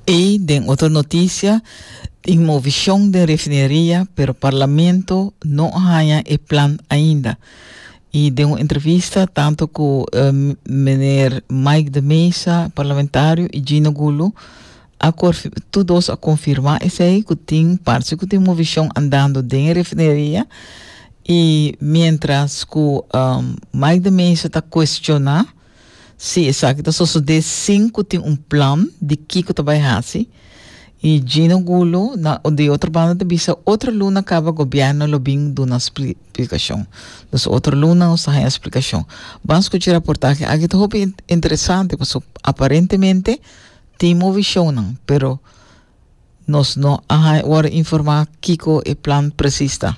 Y den otro noticia, tin movicion den refineria, pero Parlamento no a haña e plan ainda. Y den un entrevista tanto cu eh, meneer Mike de Mesa, parlamentario, y Gino Gulu, a corf- tu dos a confirma esey cu tin, parce cu tin movicion andando den e refineria. Y mientras cu um, Mike de Mesa ta cuestiona, Sí, esaki ta sosodé sin cu tin un plan di kico ta bay haci. Y Gino Gulo na di otro banda ta bisa otro luna caba gobierno lo bin duna splicacion. Dus otro luna nos ta haña splicacion. Ban scuchi raportahe aki ta hopi interesante paso aparentemente tin movicionnan pero nos no a worde informa kico e plan precies ta.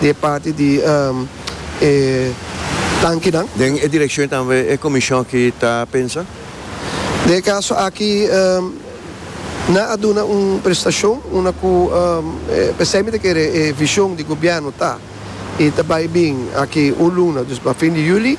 di e parti di e tankinan. Den e direkshon tambe e komishon aki ta pensa? Den e kaso aki nan a duna un prestashon unda ku p'esei mi ta kere e vishon di gobièrnu ta i ta bai bin aki un luna, dus pa fin di yuli.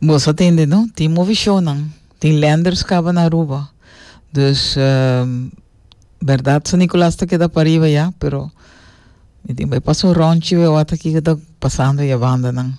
Boso a tende no? Tin movishonnan, tin lenders caba na Aruba. Dus, berdad San Nicolas ta keda pariba ya, pero mi tin bay pasa un rondje bay wata kico ta pasando e yabandanan.